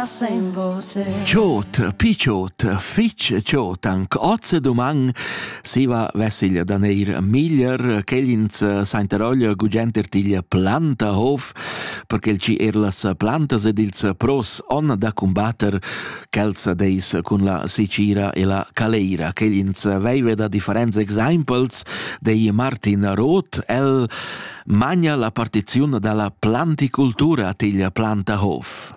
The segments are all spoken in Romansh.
Tschot, picciot, fitg tschot, anc oz e duman, siva vessiglia da neir miglier, quell'ins sainteroglia gugent ertiglia planta hof, perché il ci er las plantas ed ils pros on da combatter quels deis cun la sicira e la caleira. Quell'ins veive da differents exempels dei Martin Roth, el magna la partiziun dalla planticultura tiglia planta hof.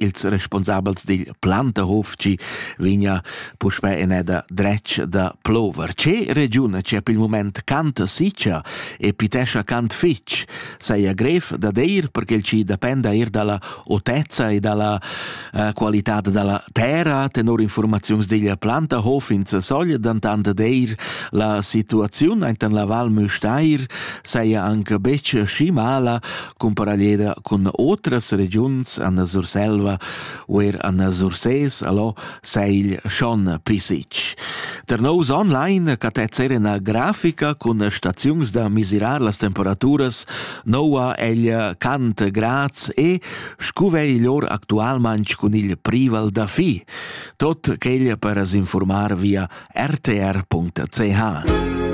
Ils responsabels dil Plantahof chi vegna puspè eneda dretg da plover. Che regiun c'è per il moment cant siccia e pitescha cant fitg? Saja grev da dir perché il chi dependa eir dalla otezza e dalla eh, qualità dalla terra. Tenor informaziuns dil Plantahof ins sogl dentant dir la situaziun ainten la Val Müstair saja anche betg schi mala cumparaglieda cun otras regiuns an la Surselva u er an la Surses, allo seigl schon pisic. Der nous online catezzer ina grafica cun staziuns da misirar las temperaturas noua egl cant grads e scuvei lor actualmanc cun il prival da fi. Tot quel per s'informar via rtr.ch.